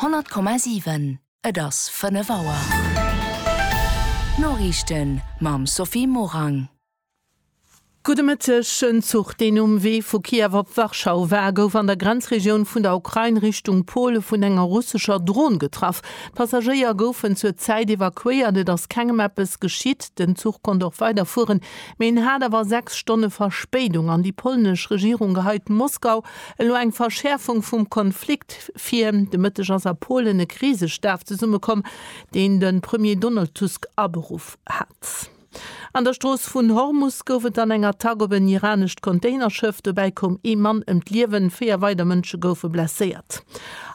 100,7 Et ass 5 Auer. D'Noriichten mam Sophie Morang. Gudde Mëtteg. En Zuch, deen um Wee vu Kiew op Warschau war, gouf an der Grenzregioun vun der Ukrain Richtung Pole vun enger russescher Dron getraff. D'Passagéier goufen zur Zäit evakuéiert. Et ass kengem eppes geschitt. Den Zuch konnt och weiderfueren, mee en hat awer sechs Stonne Verspéidung an déi polnesch Regierung geheit Moskau Elo eng Verschäerfung vum Konflikt vir. De Mëtteg ass a Polen e Krisestaf zesummekomm, deen de Premier Donald Tusk aberuff hat. An der Strooss vun Hormus gouf et dann eng Attack op en iranescht Containerschëff. Dobäi koum ee Mann ëm d'Liewen, véier weider Mënsche goufe blesséiert.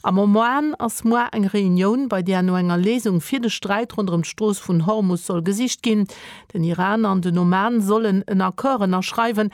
Am Oman ass moar eng Reunioun, bei där no enger Léisung fir de Sträit ronderëm d'Strooss vun Hormus soll gesicht ginn. Den Iran an den Oman sollen en Accord ënnerschreiwen,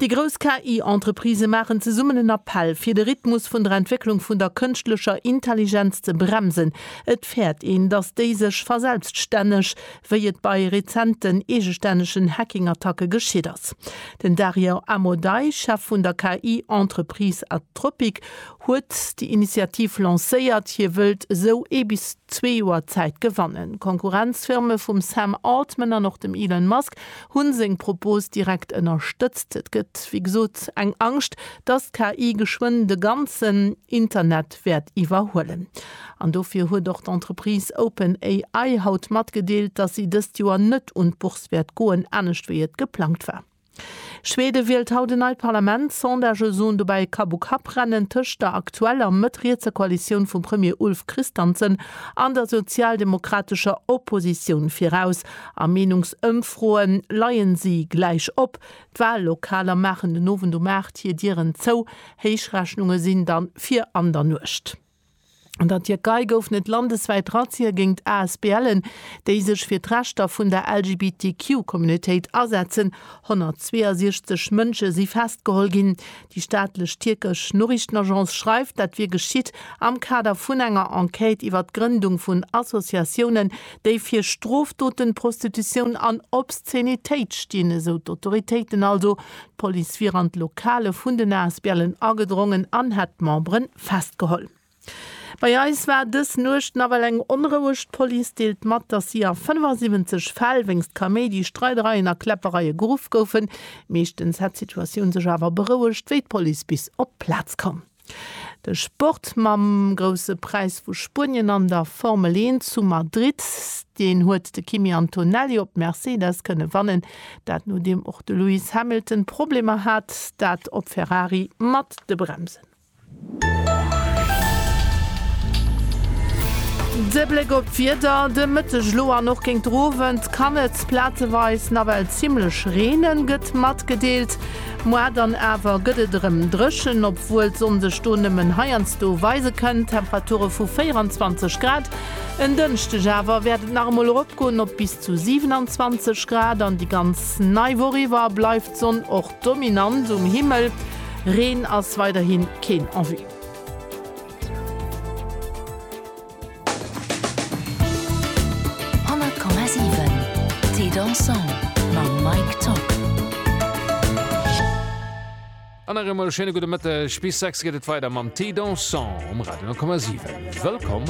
Déi grouss KI-Entreprisë maachen zesummen en Appell, fir de Rhythmus vun der Entwécklung vun der kënschtlecher Intelligenz ze bremsen. Et fäert een, datt déi sech verselbststänneg, wéi et bei rezenten eegestännegen Hacking-Attacke geschitt ass. Den Dario Amodei, Chef vun der KI-Entreprise Anthropic, huet déi Initiativ lancéiert. Hie wëllt esou ee bis zwee Joer Zäit gewannen. Konkurrenzfirme vum Sam Altman an och dem Elon Musk Hunn seng Propos direkt ënnerstëtzt. Et gëtt wéi gesot eng Angscht, dass d'KI geschwënn de ganzen Internet wäert iwwerhuelen. An dofir huet och d'Entreprise OpenAI haut matgedeelt, dass si dëst Joer net un d'Bourse wäert goen, anescht wéi et geplangt war. Schwede wielt haut en neit Parlament. Sondagë soen dobäi Kapp u Kapp rennen tëscht der aktueller mëtt-rietser Koalitioun vum Premier Ulf Kristansen an der sozialdemokratescher Oppositioun viraus. A Meenungsëmfroe leien si gläich op. D'Wallokaler maachen den Owend um 8 hir Dieren zou. Héichrechnunge sinn dann fir an der Nuecht. An der Tierkei goufen et landeswäit Razzien géingt ASBLen, déi sech fir d'Rechter vun der LGBTQ Communautéit asetzen. 162 Mënsche si festgeholl ginn. Déi staatlech tierkesch Noriichtenagence schreift, dat wier geschitt am Kader vun enger Enquête iwwer d'Grëndung vun Associatiounen, déi fir Strofdoten, Prostitutioun an Obszenitéit stinn, esou d'Autoritéiten. Also d'Police wier an d'Lokale vun den Asblen agedrongen an hätt d'Membere festgeholl. Bei eis war dës Nuecht nawell eng onroueg. D'Police deelt mat, datt si a 75 Fäll wéinst Kaméidi, Streidereien a Kläppereie geruff goufen. Meeschtens hätt d'Situatioun sech awer berouegt, wéi d'Police bis op d'Plaz koum. De Sport mam Grousse Präis vu Spuenien an der Formel 1 zu Madrid, deen huet de Kimi Antonelli op Mercedes kënne wannen. Dat nodeem och de Lewis Hamilton Problemer hat, dat op Ferrari mat de Bremsen. De Bléck op d'Wieder de Mëtteg elo an och géint d'Owend kann et plazeweis nawell zimmlech reenen, gëtt matgedeelt. Moar dann awer gëtt et erëm dréchen, obwuel d'Sonn sech do nëmmen heiansdo weise kënnt. Temperature vu 24 Grad. En Dënschdeg awer wäert et nach emol eropgoen op bis zu 27 Grad. An déi ganz nei Woch iwwer bleift d'Sonn och dominant um Himmel, Reen ass weiderhi keen en vue. An nach eemol e schéine gudde Mëtteg. Bis 6 geet et weider mam Thé Dansant um Radio 10,7. Wëllkomm!